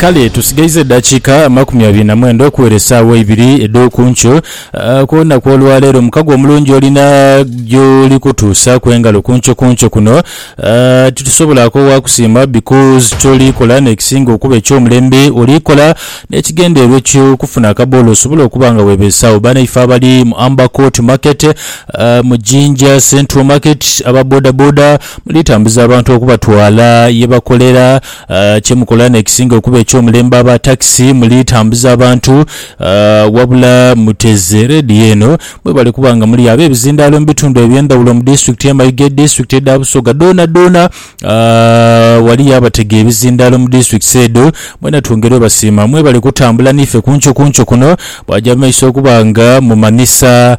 Kale tusigaiza eddakiika amakumi abiri na mwenda okuwera essaawa eibiri edh'oku nkyo. Ah, Ku lunaku olwaleero mukago omulungi olina gy'oli kutuusaaku engalo ku nkyo ku nkyo kuno. Ah, Titusobola koowa kusiima because ky'oli kola n'ekisinga okuba eky'omulembe oli kola n'ekigendererwa eky'okufuna akaboolo osobole okuba nga weebeesawo. Banaife abali mu Amber Court Market, ah, mu Jinja Central Market, aba bodaboda, Mulitambuza abantu okubatwala ye bakolera. Kye mukola n'ekisinga okuba eky'omulembe aba takisi, mulitambuza abantu. Wabula muteze leediyo eno mwebale kuba nga muli ab'ebizindaalo mu bitundu eby'endhawulo mu disitulikiti y'e Mayiga, edisitulikiti edha Busoga dhoonadhoona awali abatega ebizindaalo mu disitulikiti edho. Mwena twongerwe basiima mwebale kutambula n'ife ku nkyo ku nkyo kuno, bwagya mu maiso okuba nga mumanhisa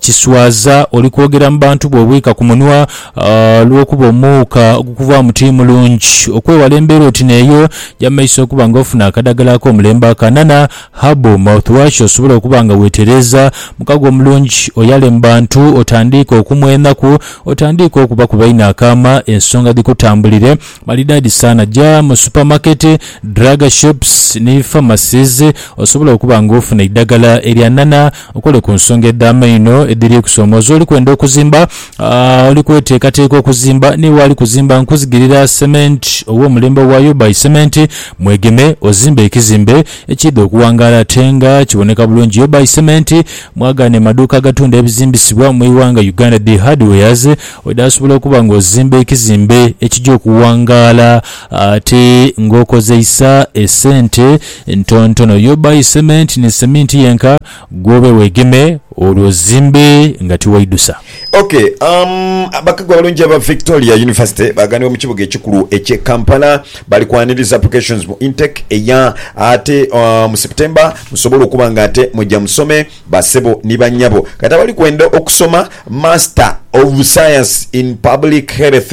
Kiswaza oli kwogera mu bantu bwe obwika ku munwa olw'okuba omuuka ogukuvaamu ti mulungi. Okwewala embeera oti n'eyo, ja mu maiso okuba nga ofuna akadagala ak'omulembe akanana, herbal mouthwash, osobole okuba nga weetereeza mukago omulungi. Oyale mu bantu, otandiike okumwa enaku, otandiike okuba ku baine akaama, ensonga dhikutambulire malidaadi sana. Ja mu supamaketi, drug shops ni pharmacies osobole okuba nga ofuna eidagala eryanana. Okole ku nsonga edh'amaino edhiri kusoomoza oli kwenda okuzimba. A Oli kweteekateeka okuzimba? Ni waali kuzimba nkuzigirira sementi ow'omulembe owayo by sementi mwegeme ozimbe ekizimbe ekiidha okuwangaala ate nga kiboneka bulungi yo by sementi mwagaane maduuka agatunda ebizimbisibwa mu iwanga Uganda dhi hardwares edhasobola okuba nga ozimba ekizimbe ekija okuwangaala ate ng'okozeisa esente Ntontono yo buy cement ni cement yenka gwobe wegeme olwo ozimbe nga tiwaidusa. Ok umm abakagu abalungi aba Victoria University baganibwa mu kibuga ekikulu ekye Kampala bali kwaniriza applications mu intake eya ate mu September musobole okuba nga ate muja musome ba sebo ni ba nyabo kati abali kwenda okusoma master of science in public health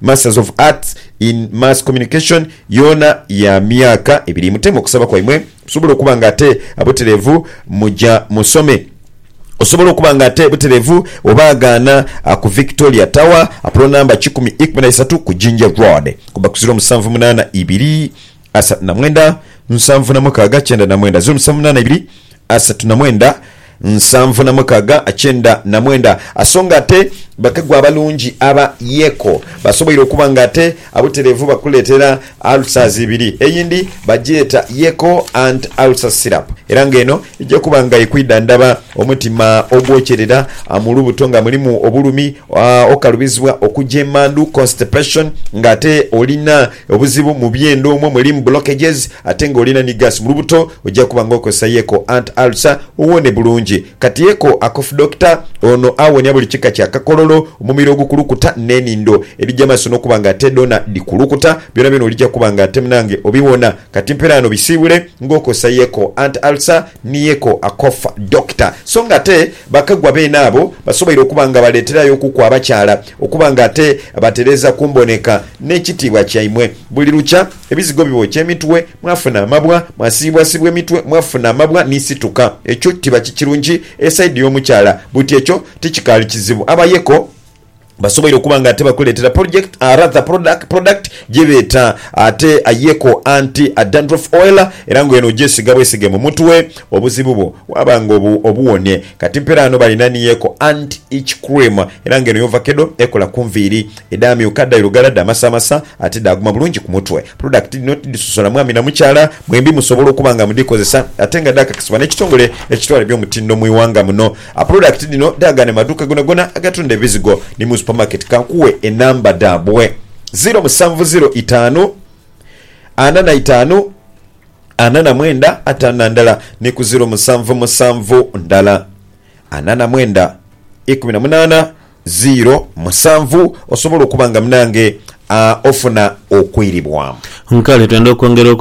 Masters of Arts in Mass Communication yoona ya myaka ebiri. Muteme okusaba kwaimwe musobole okuba nga ate abutereevu muja musome. Osobola okuba nga ate butereevu oba agaana ku Victoria Tower, pulo namba kikumi ikumi na isatu ku Jinja Road. Kuba ku ziro musanvu munaana ibiri. asatu na mwenda nsanvu na mukaaga kyenda na mwenda zeero musanvu munaana ibiri asatu na mwenda nsanvu na mukaaga kyenda na mwenda aso nga ate bakagwa abalungi aba Yeko basoboire okuba nga ate abutereevu bakuleetera ulcers ibiri eyindi bagyeta Yeko anti ulcer syrup era nga eno eja kuba nga ekwidhandhaba omutima ogwokyerera mu lubuto nga mulimu obulumi okalubizibwa okugya emandhu constipation nga ate olina Obuzibu mu byenda omwo mulimu blockages ate nga olina ni gas mulubuto oja kuba nga okozesa yeko ant ulcer owone bulungi. Kati yeko a cough doctor ono awonia buli kika kya kakololo, omumiro ogukulukuta ne nindo edhija maso nokuba nga ate dhona dhikulukuta byona byona olija kuba nga ate munange obiwona. Kati mperaano bisiibule nga okozesa yeko ant ulcer ni yeko a cough doctor. So nga ate bakagwa beene abo basoboire okuba nga baleterayo okuku abakyala Okuba nga ate batereeza ku mboneka n'ekitiibwa kyaimwe. Buli lukya ebizigo bibookya emitwe, mwafuna amabwa, mwasiibwasiibwa emitwe, mwafuna amabwa ni situka. Ekyo tiba kikirungi e saidi y'omukyala. Buti ekyo tikikaali kizibu. Abayeeko basoboire okuba nga ate bakuleetera project, rather product, product gye beeta ate ayeeko anti dandruff oil era nga eno ogyesiiga bwesiige mu mutwe, obuzibu bwo waaba nga obuwonye. Kati mperaano balina ni yeko anti ic cream era nga eno y'ovakedo ekola ku nviiri edhaamyuka dha irugala dhamasaamasa ate dhaaguma bulungi ku mutwe. Pulodakiti dhino tidhisosola mwami na mukyala, mwembi musobola okuba nga mudhikozesa ate nga dhaakakisibwa n'ekitongole ekitwala eby'omutindo mu ighanga muno. Pulodakiti dhino dhaagane mu maduuka gonagona agatunda ebizigo ni mu supamaketi. Ka nkuwe enamba dhaabwe, ziro musanvu ziro itaanu ana na itaanu. ana na mwenda ataana ndala ni ku ziro musanvu musanvu ndala ana na mwenda ikumi na munaana ziro musanvu osobola okuba nga munange ofuna okwiribwa. Nkale twenda okwongera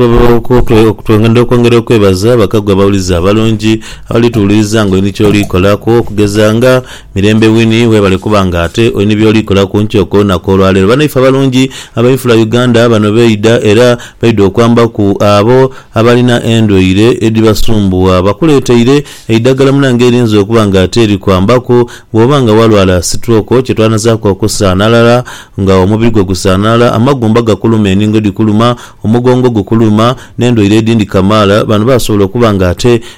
twenda okwongera okwebaza abakagwa abawulize abalungi abalituwuliriza nga olina ky'oli kolaku okugeza nga Mirembe Winnie webale kuba nga ate oli ni byoli kola ku nkyo ko lunaku olwa leero. Banaife abalungi abainfula Uganda bano beidha era baidha okwamba ku abo abalina endwaire edhibasumbuwa. Bakuleteire eidhagala munange erinza okuba nga ate likwambaku bwoba nga walwala sitwoko kyetwanazaaku okusaanalala nga omubiri gwo gusaanalala, amagumba gakuluma, eningo dhikuluma, omugongo gukuluma ne ndwaire edhindi kamaala bano basobola okuba nga ate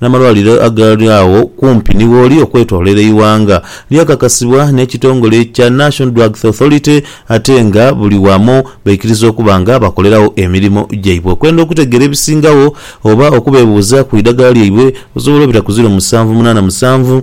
N'amalwaliro agaali agho kumpi ni wooli okwetoloera eighanga lyakakasibwa n'ekitongole ekya National Drugs Authority ate nga buli wamu baikiriza okuba nga bakoleragho emirimo gyaibwe. Okwenda okutegeera ebisingagho oba okubeebuuza ku idagala lyaibwe osobola obita ku ziro musanvu munaana musanvu,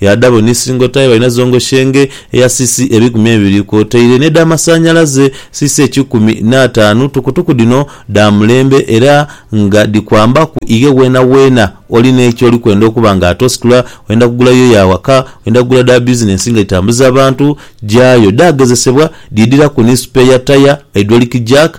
Yaadhabo ni singo tayi balina zongo shenge eya cc ebikumi ebiri kwotaire n'edhamasanhalaze cc ekikumi n'ataanu. Tukutuku dhino dha mulembe era nga dhikwambaku ighe weenaweena oli ni ky'oli kwenda okuba nga ate ositula, oyenda kugula yo ya waka, oyenda kugula dha bizinensi nga dhitambuza abantu, gyayo. Dhaagezesebwa, dhiidhiraku ni supeeya taya, haidwoliki jack,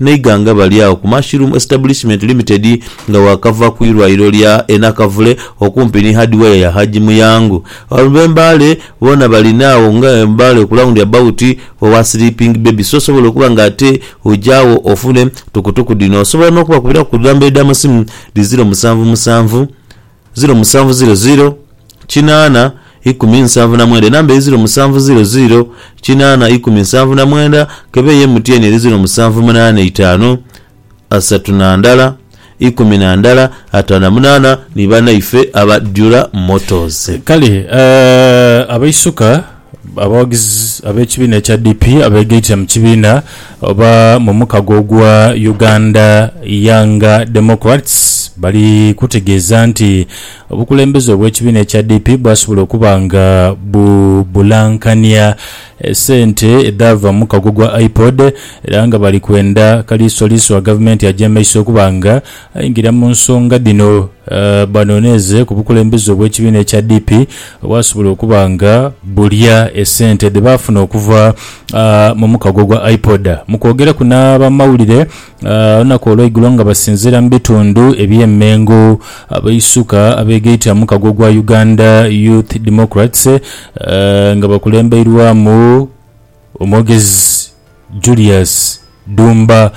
Naighanga bali agho ku Mushroom Establishment Limited nga waakava ku irwaire lya e Nakavule okumpi ni Hardware ya Haji Muyangu. Abantu b'e Mbale boona bali naagho nga e Mbale ku round about owa Sleeping Baby so osobola okuba nga ate oja agho ofune tukutuku dhino. Osobola n'okubakubiraku ku dhamba edh'amasimu dhi ziro musanvu musanvu, ziro musanvu ziro ziro kinaana ikumi nsanvu na mwenda enamba eri ziro musanvu ziro ziro kinaana ikumi nsanvu na mwenda kebe ye MTN eri ziro musanvu munaana itaanu asatu na ndala ikumi na ndala ataano na munaana ni banaife aba Dura Motors. Kale abaisuka. Abawagizi ab'ekibiina ekya DP abeegaitira mu kibiina oba mu mukago ogwa Uganda Young Democrats bali kutegeeza nti obukulembeze obw'ekibiina ekya DP bwasobola okuba nga bubulankania sente edhaava mu mukago gwa IPOD era nga bali kwenda kaliisoliiso wa gavumenti aje maiso okuba nga Aingira mu nsonga dhino banoneeze ku bukulembeze obw'ekibiina ekya DP obwasobola okuba nga bulya esente dhe baafuna okuva mu mukago ogwa IPOD. Mu kwogeraku n'abamawulire olunaku olweigulo nga basinziira mu bitundu eby'e Mengo, abaisuka abeegaita mu mukago ogwa Uganda Youth Democrats nga bakulembeirwamu Omwogezi Julius Dumba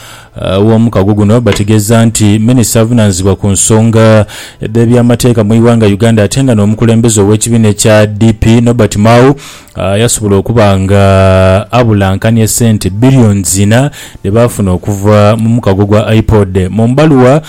w'omukago guno bategeeza nti Minisita avunaanyizibwa ku nsonga dh'ebyamateeka mu ighanga Uganda ate nga n'omukulembeze ow'ekibiina ekya DP Nobert Mao yasobola okuba nga abulankania ssente billions ina dhe baafuna okuva mu mukago gwa IPOD. Mu bbaluwa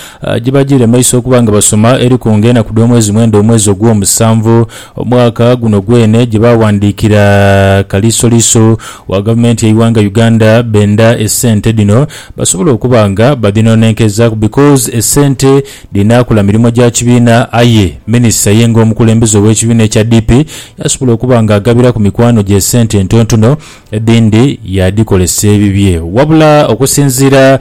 gye bajiire mu maiso okuba nga basoma eriku nga enaku dh'omwezi mwenda omwezi ogw'omusanvu, Omwaka guno gwene gye baaghandiikira Kaliisoliiso wa Gavumenti y'eighanga Uganda benda esente dhino basobole okuba nga badhinonenkezaaku because esente dhinaakola mirimo gya kibiina aye Minisita ye ng'omukulembeze ow'ekibiina ekya DP yaasobola okuba nga agabiraku mikwano gye esente entontono Edhindi yaadhikolesa ebibye. Wabula okusinziira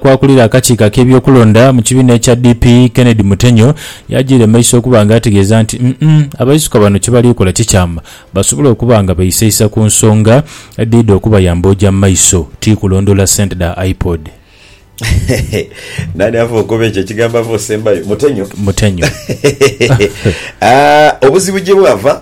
ku akulira akakiiko ak'ebyokulonda mu kibiina ekya DP, Kennedy Mutenyo yajiira mu maiso okuba nga ategeeza nti uhm abaisuka bano kye bali kola ti kyama basobole okuba nga beisaisa ku nsonga edhidha okubayamba oja mu maiso ti kulondoola sente dha IPOD. Nani ava ogoba ekyo ekigambo ava osembayo? Mutenyo? Mutenyo. Obuzibu gye bwava,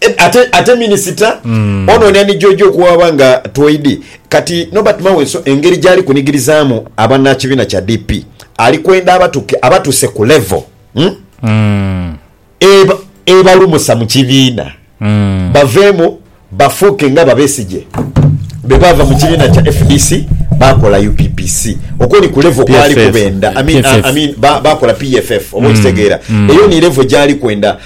Ed, ate ate minisita mm. ono ni ani jojo okuwaba nga twoidi kati nobert mawenso engeri jali kunigirizamu abanakibina kya dp ali kwenda abatuke abatuse ku level mm? mm. eba ebalumusa mu kibiina mm. baveemu bafuuke nga babesije bebava mu kibiina kya fdc bakola UPPC okwo ni kulevo kwali kubenda I mean, I mean, bakola PFF oba mm. okitegeera mm. eyo ni levo gyali kwenda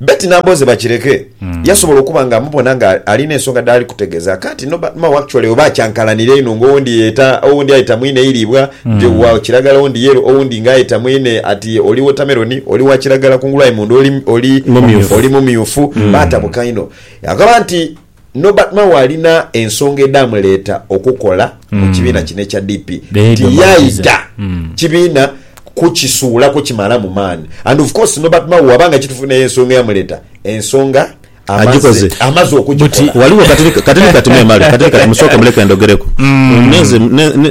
Betty Nambooze Bakireke yasobola okuba nga amubona nga alina ensonga dhaali kutegeeza aka nti no but mao actually oba akyankalanira inho nga owundi yeeta owundi ayeta mwine eiriibwa nti wa kiragala owundi yellow owundi nga ayeta mwine ati oli watermelon oli wa kiragala kungulu aye munda oli oli Mumyufu. oli mumyufu baatabuka inho. Agamba nti Norbert Mao alina ensonga edhaamuleeta okukola mu kibiina kino ekya DP nti yaidha kibiina kukisuulaku kimalamu maani and of course Norbert Mao bwaba nga kitufu naye ensonga eyamuleeta ensonga amaze amaze okugikola. Ghaligho katini katini kati memale katini kati musooke muleke ndogereku nenze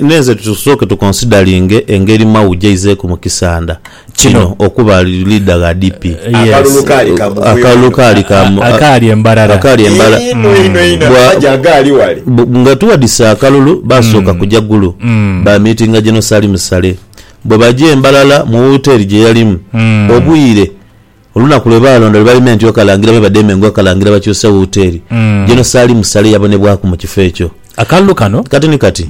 nenze tusooke tukonsidalinge engeri Mao jaizeeku mu kisanda. Kino okuba leader gha DP. Akalulu kaali ka muvuyo Akalulu inho. kaali ka mu- a- Akaali embarara. akaali embala Inho inho inho Bwa- amaje agaali wale. bu- nga tuwadise akalulu basooka kuja Gulu ba meetinga General Salim Saleh bwe baja e Mbarara mu wooteeri gye yalimu obwire Olunaku lwe baalonda lwe balima entyo Kalangira me badheeme engo Kalangira bakyuse wuuteeri General Salim Saleh yabonebwaku mu kifo ekyo. Akalulu kano. Kati ni kati,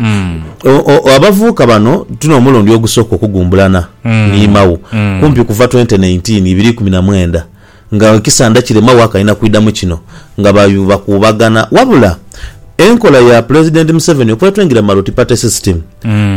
o, abavuuka bano tuno omulundi ogusooka okugumbulana ni Mao, kumpi kuva twente naintiini, ibiri ikumi na mwenda, nga ekisanda kire Mao akaina kwidha mu kino, nga ba, bakuubagana. Wabula, enkola ya Pulezidenti Museveni okwetwingira mu multiparty system,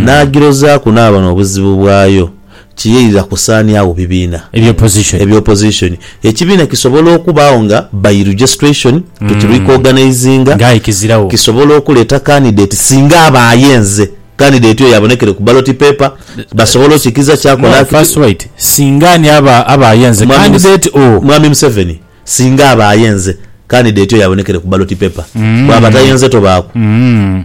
n'agirozaaku n'aba n'obuzibu bwayo. kiyairira kusaani agho bibiina Ebya opposition. ebya opposition. Ekibiina kisobola okubaagho nga by registration, kekiri ku organizinga, Nga aye kizira wo. kisobola okuleeta candidate singa aba ayenze, candidate oyo abonekere ku ballot paper, basobola okikiza kyakola No, akiti. first wait. Singa ani aba aba ayenze? Mwami Muse- Candidate o. Mwami Museveni singa aba ayenze, candidate oyo abonekere ku ballot paper, bwaba tayenze tobaaku. Mm.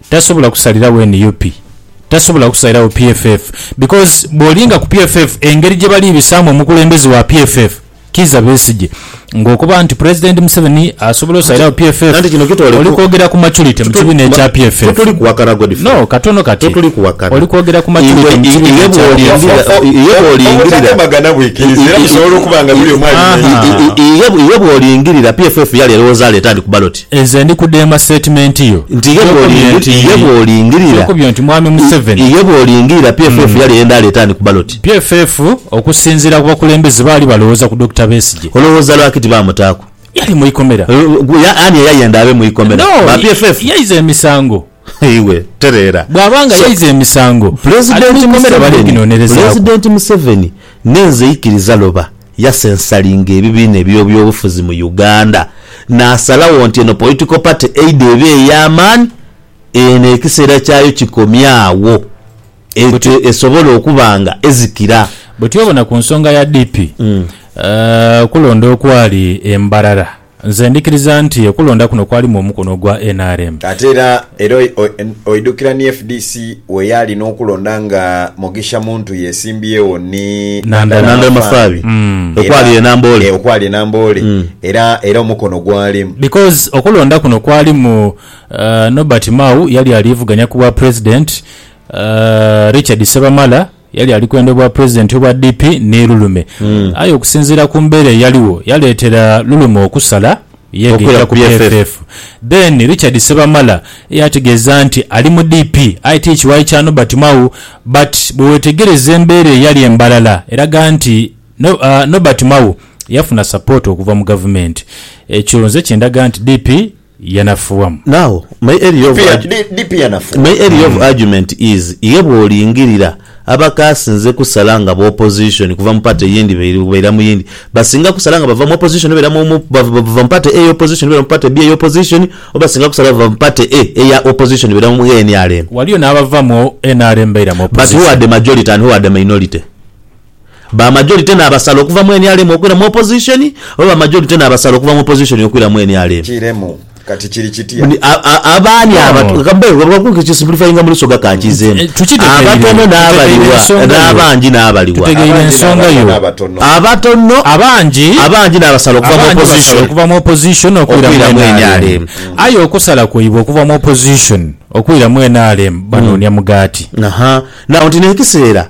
Tasobola kusalirawo nup, tasobola kusalirawo PFF because bwolinga ku PFF engeri gyebali bisaamu omukulembeze wa PFF Kiiza Besigye nga okuba nti President Museveni asobola osalirawo PFF oli kwogera ku maturity mu kibiina ekya PFF. No katono kati oli kwogera ku maturity mu kibiina ekya PFF. Obutatemaganha bwikiriza era busobola okuba nga buli omu abimanya. Iye bwolingirira PFF yali elowoza aleeta ani ku ballot? Nze ndi kudema statement yo. Nti ye bwolingirira, Kyokubye nti Mwami Museveni. Ye bwolingirira PFF yali eyenda aleete ani ku ballot? PFF okusinziira ku bakulembeze baali balowooza ku Dokita Besigye. Olowooza lwaki tibaamutaaku? Yali mu ikomera. Ani eyayenda abe mu ikomera? No, yaiza emisango. Iwe tereera. Bw'aba nga yaiza emisango, ali mu ikomera bali ginonerezaaku. Pulezidenti Museveni, Ni nze ikiriza Loba yasensalinga ebibiina eby'obyobufuzi mu Uganda naasalagho nti eno Political Party eidha eba ey'amaani, eno ekiseera kyayo kikomye agho ete esobole okuba nga ezikira. Bwe twebona ku nsonga ya DP, okulonda okwali e Mbarara, Nze ndhikiriza nti okulonda kuno kwalimu omukono ogwa nrm. Ate era era oidhukira ni fdc weyaali n'okulonda nga Mugisha Muntu yesimbyegho ni Nandala Mafaabi okwali e Namboole okwali e Namboole era era omukono gwalimu. Because okulonda kuno kwalimu Nobert Mao yali aliivuganya ku bwa president, Richard Ssebamala Yali ali kwenda obwa Pulezidenti obwa DP ni Lulume aye okusinziira ku mbeera eyaligho yaleetera Lulume okusala yeegaita ku PFF. Then Richard Ssebamala yaategeeza nti ali mu DP aye ti kiwayi kya Nobert Mao but bwe weetegereza embeera eyali e Mbarara eraga nti Nobert Mao yafuna support okuva mu Gavumenti. Ekyo nze kindaga nti DP yanafuwamu. Now my area of my area of argument is iye bwolingirira abakasinze kusala nga b'opposition kuva mu party yindi baira mu yindi basinga kusala nga bava mu opposition baira mu bava mu party A eya opposition baira mu party B eya opposition oba basinga kusala bava mu party A eya opposition baira mu nrm. Waliyo n'abava mu nrm baira mu opposition. But who are the majority and who are the minority? ba majority n'abasala okuva mu nrm okwira mu opposition oba ba majority n'abasala okuva mu opposition okwira mu nrm? Kiremu. Kati kiri kitya? Abaani abatono, ka mbe nga nkisimplifyinga mu liso gha kankiizeemu, abatono n'abaliwa? N'abangi n'abaliwa? Abangi n'abaliwa n'abatono? Abatono, abangi n'abasala okuva mu opposition okwira mu nrm? Aye okusala kwaibwe okuva mu opposition okwira mu nrm banoonia mugaati. Aha. Now nti n'ekiseera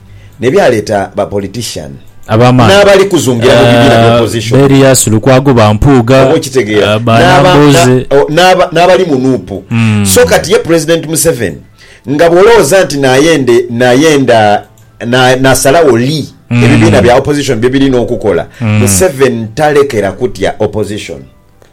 ne byaleeta ba politician n'abali kuzungira mu bibiina bya opposition, oba okitegeera, n'abali mu nup. So kati ye President Museveni nga bw'olowooza nti nayenda naasalawo li ebibiina bya opposition bye birina okukola, Museveni talekera kutya opposition.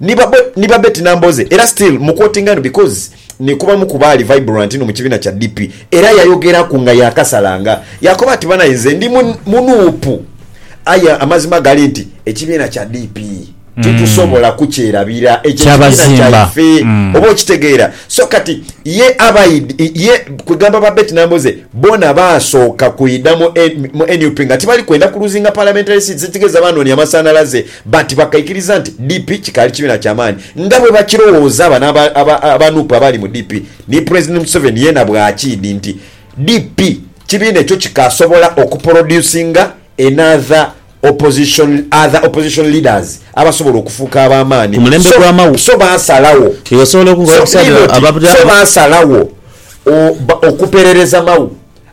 Ni ba Betty Nambooze era still mu quotinga eno because ni kubamu ku baali vibrant inho mu kibiina kya DP era yayogeraku nga yakasala nga yakoba ati banaye nze ndi mu Nup aye amazima gali nti ekibiina kya DP titusobola kukyerabira ekyo ekibiina kyaife oba okitegeera so kati ye ye kwegamba ba Betty Nambooze boona baasooka kwidha mu Nup nga tibali kwenda ku luzinga parliamentary seats ekitegeeza baanoonia masanhalaze But bakaikiriza nti DP kikaali kibiina kya maani nga bwebakirowooza bano aba nup abaali mu DP ni President Museveni yeena bwakiidi nti DP kibiina ekyo kikaasobola oku producinga another opposition other opposition leaders abasobola okufuuka abamaani so so baasalawo so niinoti so baasalawo okuperereza Mao.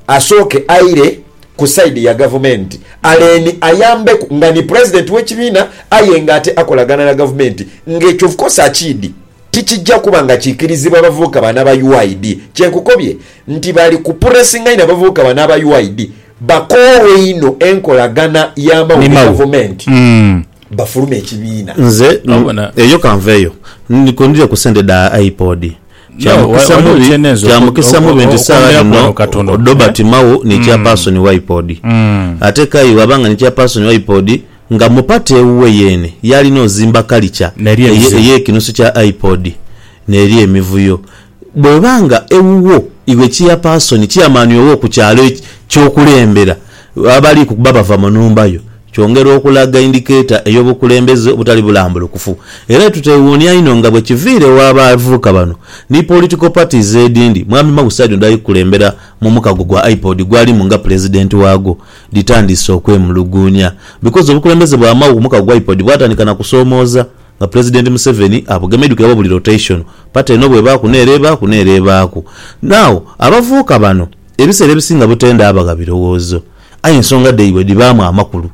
asooke aire ku side ya gavumenti aleni ayambeku nga ni president we kibiina aye nga ate akolagana na gavumenti nga ekyo of course akiidi tikijja kuba nga kikirizibwa bavubuka bano aba UYD kyenkukobye nti bali ku puresinga inho abavubuka bano aba UYD bakoowee inho enkolagana ya mau ni gavumenti bafulume ekibiina. Nze eyo kanveyo. Ndiko ndidhe ku sente dha IPOD. Kya mukisa mu bintu saagha dhino odhoba ti Mao ni Chairperson wa IPOD. Ate Kaye bw'aba nga ni Chairperson wa IPOD, nga mu pate ewuwe yeene yaalina ozimba kalica ey'ekinusu kya IPOD n'eri emivuyo. Bw'eba nga ewuwo iwe Chairperson, Chairman woowo ku kyalo eky'okulembera abali kuba bava mu nhumba yo, Kyongera okulaga indikeeta ey'obukulembeze obutali bulambulukufu. Era tuteewuunia inho nga bwe kiviiregho abavubuka bano ni political parties edindi, Mwami Mau saidi ono dhali kukulembera mu mukago gwa IPOD gwalimu nga Pulezidenti waagwo, dhitandiise okwemuluguunia. Because obukulembeze bwa Mau ku mukago gwa IPOD bwatandika na kusoomooza nga Pulezidenti Museveni abugema idhukira oba buli rotation, party eno bw'ebaaku n'ere ebaaku n'ere ebaaku. Now, abavubuka bano ebiseera ebisinga butenda abagha birowoozo. Aye ensonga dhaibwe dhibaamu amakulu.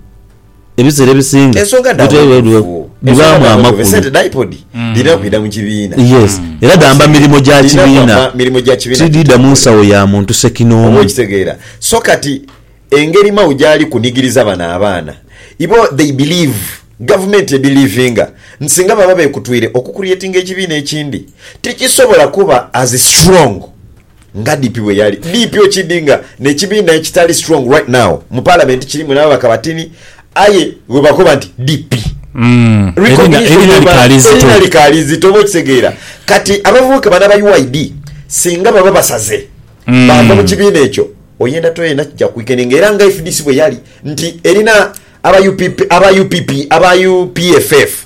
Ebiseera ebisinga Ensonga dha bwetwali bweru butuufu. Ensonga dhibaamu dha bweru butuufu. amakulu. Esente dha IPOD dhirina kwidha mu kibiina. Yes. Era dhamba Kasirye, mirimo gya dhirina kibiina. kwamba mirimo gya kibiina Tidhidha mu gitongole. nsawo ya muntu Oba ssekinoomu. okitegeera. So kati engeri Mao gy'ali kunigiriza bano abaana, ibo they believe, gavumenti ebelivinga nti singa baba beekutwire okucreatinga ekibiina ekindi, tikisobola kuba as strong Nga DP bweyali DP okidinga ne kibiina ekitali strong right now mu parliament kilimu nababaka batini aye webakoba nti DP erina likaali zito oba okitegeera kati abavubuka bano aba UID singa baba basaze bava mu kibiina ekyo oyenda toyenda kija kwekeninga era nga fdc bweyali nti erina aba UPP aba UPP aba UPFF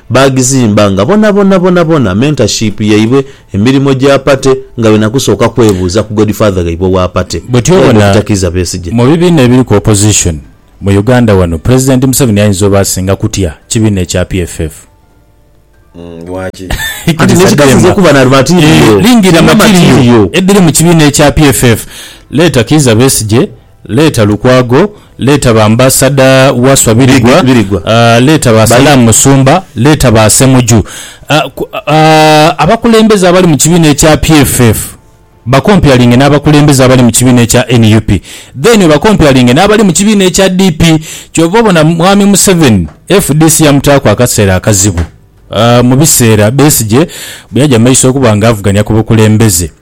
Baagizimba nga bonabona bonabona mentorship yaibwe, emirimo gya party nga byona kusooka kwebuuza ku godfather ghaibwe owa party Bwotyo era ye obona Dokita Kiiza Besigye. mu bibiina ebiriku opposition mu Uganda wano Pulezidenti Museveni ayinza oba asinga kutya kibiina ekya PFF. Uhmm lwaki? Anti Idirisa nekikasiza Dhema okuba na material, eeh lingira kirina material material. edhiri mu kibiina ekya PFF. Leeta Kiiza Besigye Leeta Lukwago, leeta ba Ambasada Wasswa Birigwa, leeta ba Salam Musumba, leeta ba Ssemuju. Abakulembeze abali mu kibiina ekya PFF bakompeyalinge n'abakulembeze abali mu kibiina ekya nup then obakompeyalinge n'abali mu kibiina ekya DP. Ky'ova obona Mwami Museveni fdc yamutaaku akaseera akazibu mu biseera Besigye bwe yaja mu maiso okuba ng'avuganya ku bukulembeze.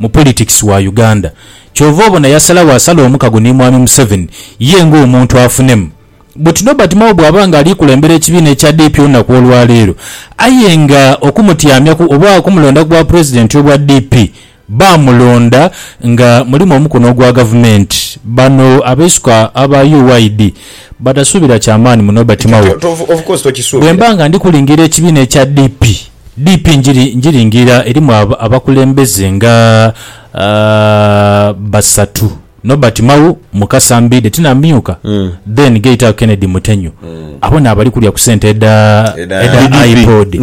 mu politics wa Uganda kyova obona yasalagho asala omukago ni mwami Museveni ye nga omuntu afunemu but Nobert Mao bwaba nga alikulembera ekibiina ekya DP olunaku olwaleero aye nga okumutyamyaku oba okumulonda ku bwa president obwa DP bamulonda nga mulimu omukono ogwa gavumenti bano abeisuka aba UYD batasuubira kyamaani mu Nobert Mao bwemba nga ndikulingira ekibiina ekya DP. DP Ngiringirira erimu abakulembeze nga basatu, Nobert Mao, Mukasa Mbidde tinamyuka, then Geita Kennedy Mutenyo. Abo n'abali kulya ku sente edha IPOD.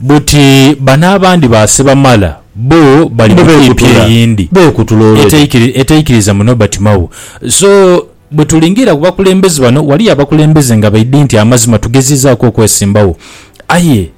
Buti bano abandi ba Sebamala bo bali mu DP eyindi etaikiriza mu Nobert Mao. So bwetulingira ku bakulembeze bano, waliyo abakulembeze nga baidhi nti amazima tugezizaaku okwesimbawo aye.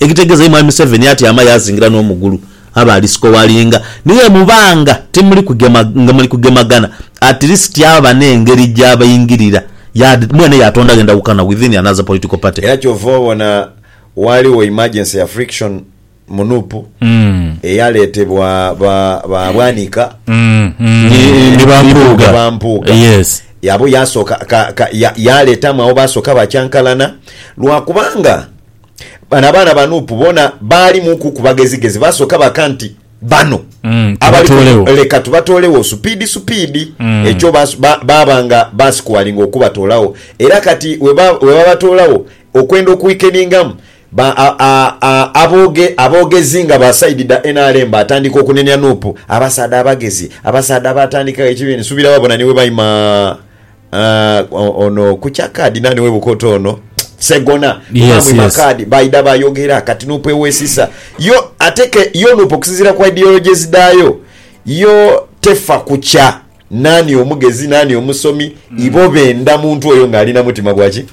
Ekitegeeza ye mwami Museveni atyama yaazingira n'omugulu abe ali sikowaali nga ni bwe muba nga timuli kugema nga muli kugemagana at least aba n'engeri gy'abaingirira yade mwene yaatondagho endawukana within another political party. Era kyova obona waaliwo emergency ya friction mu nup eyaleetebwa ba ba Bwanika ni ba Mpuuga ba Mpuuga abo yaasooka ka ka ya yaaleetamu abo baasooka bakyankalana lwa kubanga Bano abaana ba Nup bona baali muku ku bagezigezi basoka baka nti bano abali kuno leka tubatoolegho supiidi supiidi ekyo baaba nga baasikuwalinga okubatoolagho era kati webabatoolagho okwenda okuwikeningamu aboogezi nga ba sayidi dha nrm baatandika okunenia Nup abasaadha abagezi abasaadha abaatandikagho ekibiina nsubira wabona ni webaima Aah ono kukya card nani webukota ono Ssegona kuba Yes, mwima yes. card baidha bayogera kati nup ewesisa yo ate ke yo nup okusinzira ku ideologies dhayo yo tefa kukya nani omugezi nani omusomi ibo benda muntu oyo nga ali namutima gwaki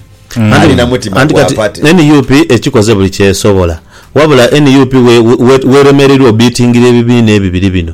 ali namutima Mm. Anti gwa kati party. nup ekikoze buli kyesobola wabula nup we- we- weremereirwa obitingira ebibiina ebibiri bino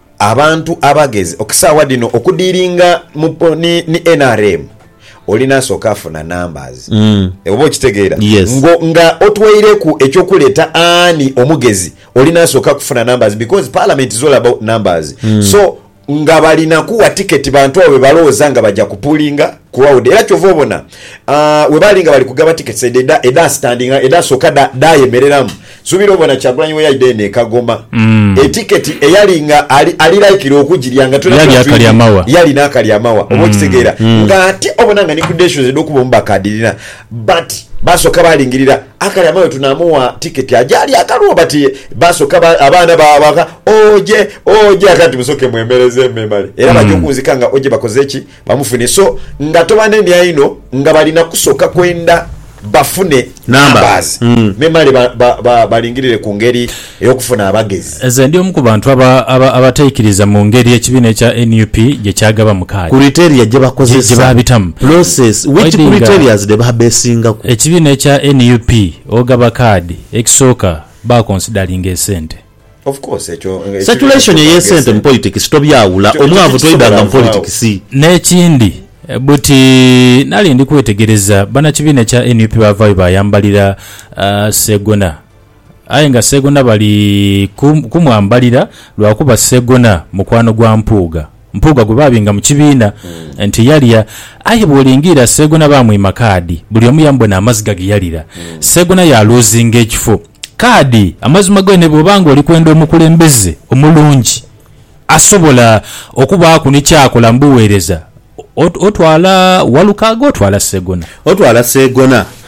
Abantu abagezi okusawa dhino okudilinga mu ni nrm olina soka funa numbers oba okitegera ngo nga otweireku ekyo kuleta ani omugezi olina soka kufuna numbers because parliament is all about numbers so nga balina kuwa ticket bantu abo bebalowoza nga baja ku pullinga crowd era kyova obona aah webali nga bali kugaba tickets edho eda standinga eda soka dha yemereramu Nsubira obona Kyagulanyi weyaidha eno e Kagoma e ticket eyali nga ali likely okugirya nga twena tuba twidhi yalina akali amawa oba okitegeera nga ate obona nga ni credentials edhokuba omubaka adhirina but basoka balingirira akali amawa wetunamuwa ticket aje alye akalwo but basoka abaana baabaka oje oje ate ati musoke mwemereze memale era baja okunzika nga oje bakoze ki Bamufune so nga tobanenia inho nga balina kusoka kwenda bafune numbers memale balingirire ku ngeri eyokufuna abagezi. Nze ndi omu ku bantu abataikiriza mu ngeri ekibiina ekya nup gye kyagabamu kaadi, gye baabitamu. Ekibiina ekya nup ogaba kaadi, ekisooka bakonsidalinga esente. Circulation ey'esente mu politikisi tobyawula, omwavu toidanga mu politikisi. N'ekindi, buti nali ndi kwetegereza bannakibiina ekya nup baavaayo baayambalira Ssegona aye nga Ssegona bali kumwambalira lwakuba Ssegona mukwano gwa Mpuuga. Mpuuga gwe baabinga mu kibiina nti yalya. Aye bw'olingiira Sseegona baamwima kaadi, buli omu yamubona amaziga ge yalira. Sseegona yaaluuzinga ekifo. Kaadi, amazima g'ene bw'oba ng'oli kwenda omukulembeze omulungi asobola okubaaku ni ky'akola mu buweereza, otwala Walukaaga otwala Sseegona? Otwala Sseegona.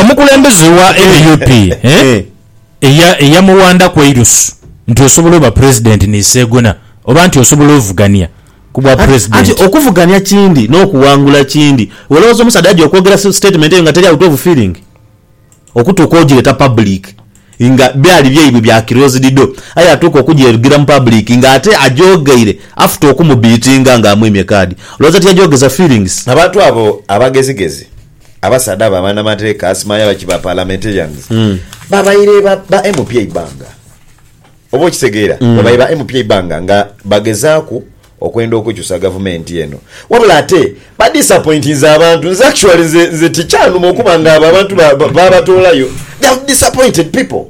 Omukulembeze wa nup eyamuwandaku eirusu nti osobola oba president ni segona oba nti osobola ovugania kubwa president. Anti okuvugania kindi nokuwangula kindi. Iwe olowoza omusaadha aja okwogera statement eyo nga teri awuta ovu feeling? okutuuka ojireta public nga byali byaibwe bya closed door aye atuuka okujerugira mu public nga ate ajogeire after okumubeatinga nga amwimye card olowooza tiyajogeza feelings? Abantu abo abagezigezi, abasaadha abo abanamateeka, asimaya baki ba parliamentarians, babaire ba ba MP eibanga. Oba okitegeera? Babaire ba MP eibanga nga bagezaaku. okwenda okukyusa gavumenti eno wabula ate ba disappointinze abantu nze actually nze nze tikyanuma okuba nga abo abantu ba- ba- babatoolayo they have disappointed people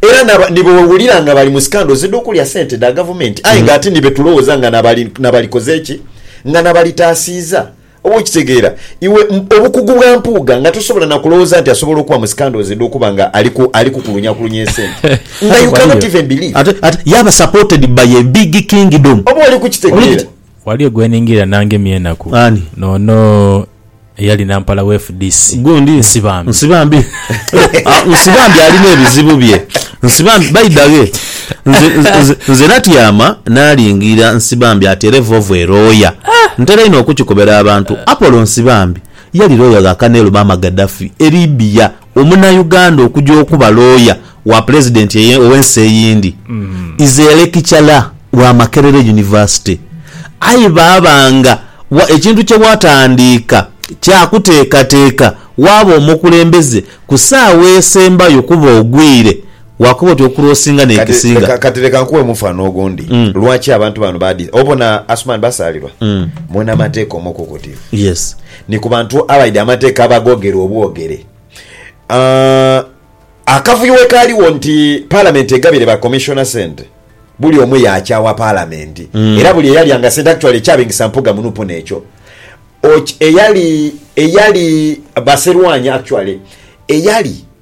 era naba- nibo wewulira nga bali mu scandals edhokulya sente dha gavumenti aye nga ate nibetulowoza nga nabali- nabalikoze ki nga nabalitaasiiza Oba okitegeera iwe obukugu bwa Mpuuga nga tosobola na kulowooza nti asobola okuba mu scandals edh'okuba nga ali kukulunyakulunye esente nga you cannot even believe. Ate yaaba supported by a big kingdom. Oba oli kukitegeera. Waliyo gweningirira nangemi enaku Ani? noono eyali nampala we fdc Gundi? Nsibambi. Nsibambi. Nsibambi alina ebizibu bye. Nsibambi by the way. Nze, nze, nze natyama naalingiira Nsibambi ati era evovo erooya. Ntera inho okukikobera abantu. Apollo Nsibambi yali looya gha Colonel Muammar Gaddafi e Libya, Omunayuganda okuja okuba looya wa Pulezidenti eye, ow'ensi eyindi. Ize lekicara wa Makerere University. Aye baaba nga wa, ekintu kye watandiika kya kuteekateeka waaba omukulembeze ku saawa esembayo kuba ogwire Waakoba oti okuroosinga n'ekisinga. Kati, kati leka nkuwe omufano ogundi lwaki abantu bano badi. Obona Asuman Basaalirwa? Mwena amateeka omukukutivu. Yes. Ni ku bantu abaidhi amateeka abagogera obwogere. Aah, akavuyo we kaaliwo nti Palamenti egabire ba Commissioner sente, buli omu yaakyawa Palamenti era buli eyalyanga sente, actually ekyabingisa Mpuga mu nup n'ekyo. Oky, eyali, eyali Baserwanya actually, eyali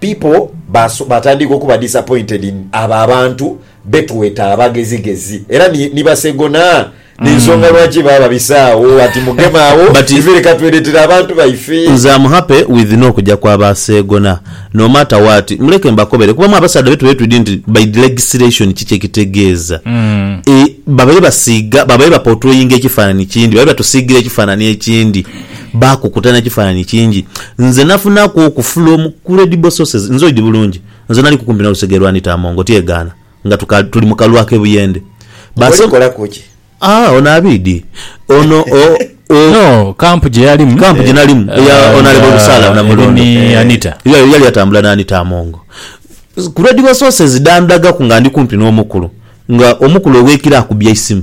People baso batandika okuba disappointed in abo abantu betweta abagezigezi era ni ni basegona nensonga lwaki baba babise agho ati mugeme agho But ife leka tweretere abantu baife. Nze am happy with nokuja kwa ba seegona no matter what muleke mbakobere kuba mwe abasaadha betu baire twidhi nti by the legislation ki kyekitegeeza e babaire basiiga babaire ba portrayinga ekifanani kindhi babaire batusiigira ekifanani ekindhi. Baakukuta n'ekifaananyi kingi. Nze nafunaku oku from credible sources, nze oidhi bulungi, nze naliku kumpi n'olusegere lwa Anita Among, otyegaana, nga tuka, tuli mu kalwa ak'e Buyende. Baaso, Olikolaku ki? Ah, ono Abiidi. Ono, o, o. No, camp gye yalimu. Camp gye nalimu, eya Ah, Honourable nga Busaala eri Namulondo. ni Anita. Ye, yali atambula ni Anita Among. Credible sources dhandhagaku nga ndi kumpi n'omukulu, nga omukulu ow'ekiro akubye eisimu.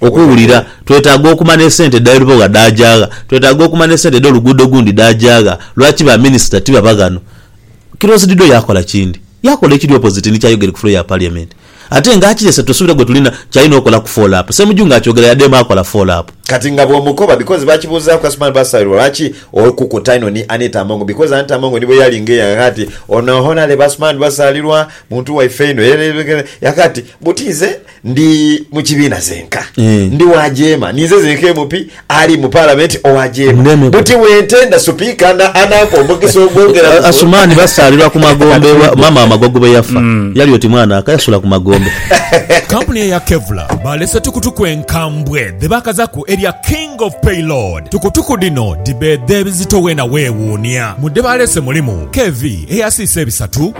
Okuwulira, Twetaaga okumanya esente edh'ebiboogha dhaaja gha? Twetaaga okumanya esente edh'oluguudo olundi dhaaja gha? Lwaki ba minisita tibaba ghano? Kilosi Dido yaakola kindi. Yaakola ekiri opposite ni ky'ayogere ku floor ya Parliament. Ate nga akirese tusubira gwe tulina ky'alina okola ku follow up. Ssemujju nga akyogera yadheema akola follow up. Kati nga bw'omukoba because baakibuuzaaku Asuman Basairo lwaki okukuta inho ni Anita Among because Anita Among ni bwe yali ng'eyagha ati, Ono Honourable Asuman Basalirwa muntu waife inho era era era. Yagha ati, Buti nze. Ndi mu kibiina zenka. Eh. Ndi wa jeema. Ninze zenka MP ali mu Palamenti owa jeema. Ndeme ku- Buti bwentenda Supiika na anampa omukisa ogwongera A- ku- Asumani basaalirwa ku magombe ewa maama wa Magogo bwe yafa. Yali oti mwana aka yasula ku magombe. Kampuni eya Kevlar balese tukutuku enkambwe dhebakazaku erya King of Payload. Tukutuku dhino dhibeedha ebizito weena weewuunia. Mu dhebalese mulimu, KV eyasiisa ebisatu,